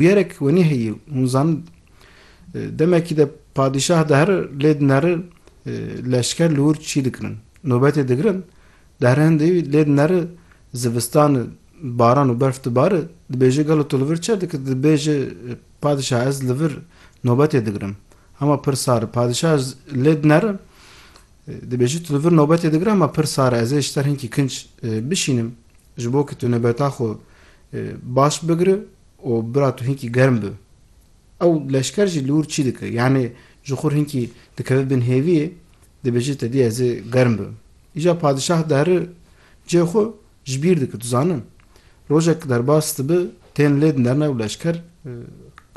Gerek wenî heyî û hûn zan demekî de padîşah dihere lê di nere leşker li wir çî dikirin. Nobetê digirin, dihere hindê wî lê di nere zivistan e baran û berf dibare, dibêje gelo tu li vir çi dikir? Dibêje padîşah ez li vir nobetê digirim. Hema pir sar e. Padîşah lê di nere dibêje tu li vir nobetê digire hema pir sar e. Ez ê ji ter hinkî kinc bişînim ji bo ku tu nobeta xwe baş bigire û bira tu hinkî germ bi. Ew leşker jî li wir çî dike. Yanî ji xwe re hinkî dikeve bin hêviyê, dibêje tedî ez ê germ bibim. Îcar padişah diheri cihê xwe ji bîr dike. Tu zanî rojek derbas dibe tên lê dinerne û leşker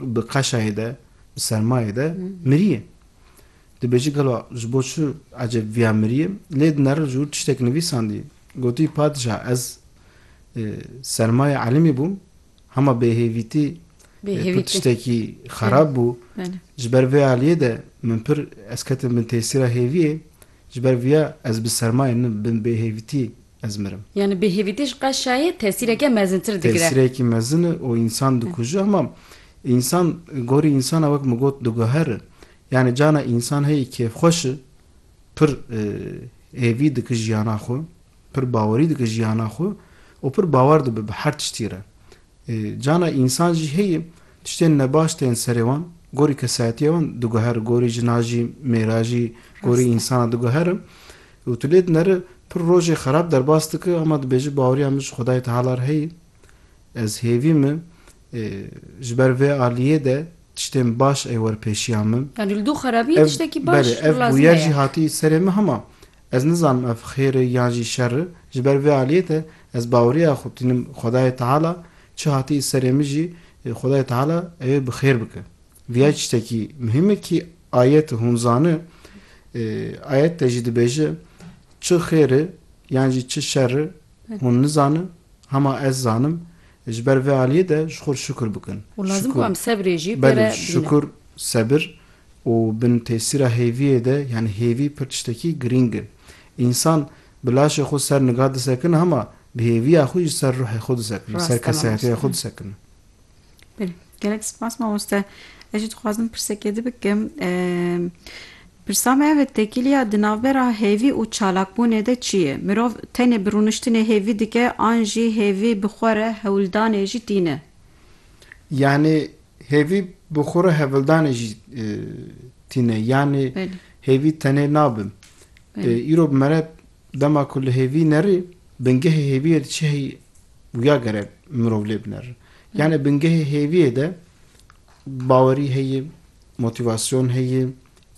bi qeşayê de, bi sermayê de mirîye. Dibêje gelo ji bo çi ecêb viya mirîye? Lê dinere ji wir tiştek nivîsandiye. Gotî padişah ez sermayê elimî bûm, Hema bêhêvîtî pir tiştekî xerab bû. Ji ber vê aliyê de min pir ez ketim bin tesîra hêviyê. Ji ber viya ez bi sermayê nin bin bêhêvîtî ez mirim. Yanî bêhêvîtî ji qeşayê tesîreke mezintir digire. Tesîrekî mezin e û însan dikuje. Hema însan gorî însan e wek min got diguher e. Yanî cana însan heyî kêfxweş e, pir hêvî dike jiyana xwe. Pir bawerî dike jiyana xwe û pir bawer dibe bi her tiştî re. Cana însan jî heye tiştên nebaş tên serê wan, gorî kesayetiya wan diguhere, gorî jina jî, mêra jî, gorî însana diguhere û tu lê dinere pir rojê xerab derbas dike ama dibêje baweriya min ji Xwedayê Teala re heye, ez hêvî me ji ber vê aliyê de tiştên baş ey wer pêşiya min. Yanî li dû xerabiyê tiştekî baş lazim heye. Belê, ev bûyer jî hatî serê min hema Ez nizanim ev xêr e yan jî şer e, ji ber vê aliyê de ez baweriya xwe tînim Xwedayê Teala çi hatî serê min jî Xwedayê Teala ew ê bi xêr bike. Viya tiştekî muhîm e kî ayet hûn zani, ayet de jî dibêje çi xêr e yan jî çi şer e hûn nizani hema ez zanim ji ber vê aliyê de ji xwe re şukur bikin. Û lazim ku em sebrê jî pê re bînin. Belê şukur, sebir Û bin tesîra hêviyê de yanî hêvî pir tiştekî girîng in. Însan bi laşê xwe ser niga disekine hema bi hêviya xwe jî ser ruhê xwe disekine, ser kesehetê xwe disekine. Belê. Gelek spas mamoste. Ez jî dixwazim pirsekê di bikim. Pirsa me ev e tekîliya di navbera hêvî û çalakbûnê de çi ye? Mirov tenê bi rûniştinê hêvî dike an jî hêvî bi xwe re hewldanê jî tîne? Yanî Hêvî bi xwe re hevildanê jî tîne. Yanî hêvî tenê nabin. Îro bi mere dema ku li hêvî nerî bingehê hêviyê di çi heyî wiya gere mirov lê binerin. Yanî bingehê hêviyê de bawerî heye, motîvasyon heye,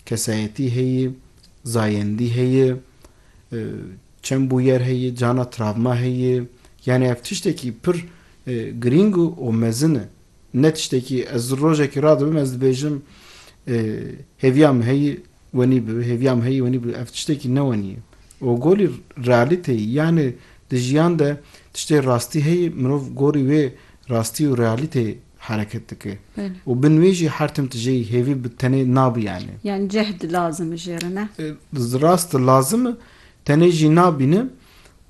kesayetî heye, zayendî heye, çend bûyer heye, cana travma heye. Yanî ev tiştekî pir girîng û mezin e. Ne tiştekî ye. Ez rojekî radibim ez dibêjim hêviya min heyî wenî bibe, hêviya min heyî wenî bibe. Ev tiştekî ne wenî ye. Û gorî realîteyî yanî di jiyan de tiştê rastî heyî mirov gorî wê rastî û realîteyê hereket dike. Û bin wê jî her tim tijeyî hêvî bi tenê nabî yanî. Yanî cehd lazim e jê re ne? Rast e lazim e. Tenê jî nabîne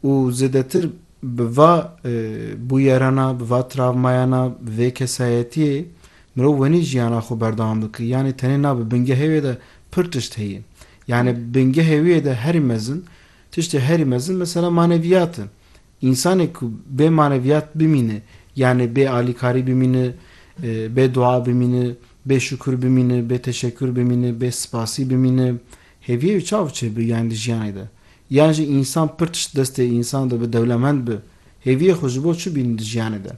û zêdetir Bi va bûyerana, bi va travmayana, bi vê kesayetiyê mirov wenî jiyana xwe berdewam bike. Yanî tenê na bi bingehê wê de pir tişt heye. Yanî bingehê wê de herî mezin, tiştê herî mezin mesela maneviyat e. Însanê ku bê maneviyat bimîne, yanî bê alîkarî bimîne, bê dua bimîne, bê şukur bimîne, bê teşekur bimîne, bê spasî bimîne, Hêviyê wî çav çê bi yan li jiyanê de? Yan jî însan pir tişt destê însan de bi dewlemend bi? Hêviyê xwe ji bo çi bînin li jiyanê de?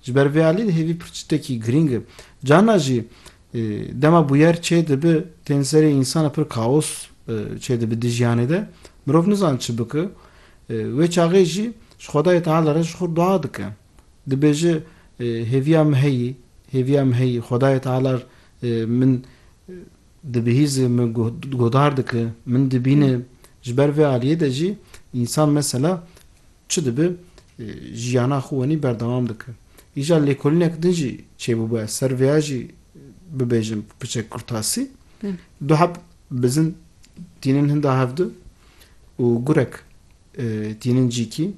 Ji ber vê alî de hêvî pir tiştekî girîng e. Carna jî dema bûyer çê dibi tên serê însan pir kaos çê dibi di jiyanê de. Mirov nizan çi bike. Wê çaxê jî ji Xwedayê Teala re ji xwe dua dike. Dibêje Hêviya min heyî, hêviya min heyî, Xwedayê Teala min Di bihîzê min guhdar dike, min dibîne. Ji ber vê aliyê de jî însan mesela çi dibe jiyana xwe wenî berdewam dike. Îja lêkolînek din jî çêbûbû ez ser vêya jî bibêjim piçek kurtasî. Du heb bizin tînin hinda hev de û gurek tînin cîkî.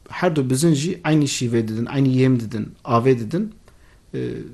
Herdu bizin jî eynî şîvê didin, eynî yêm didin, avê didin.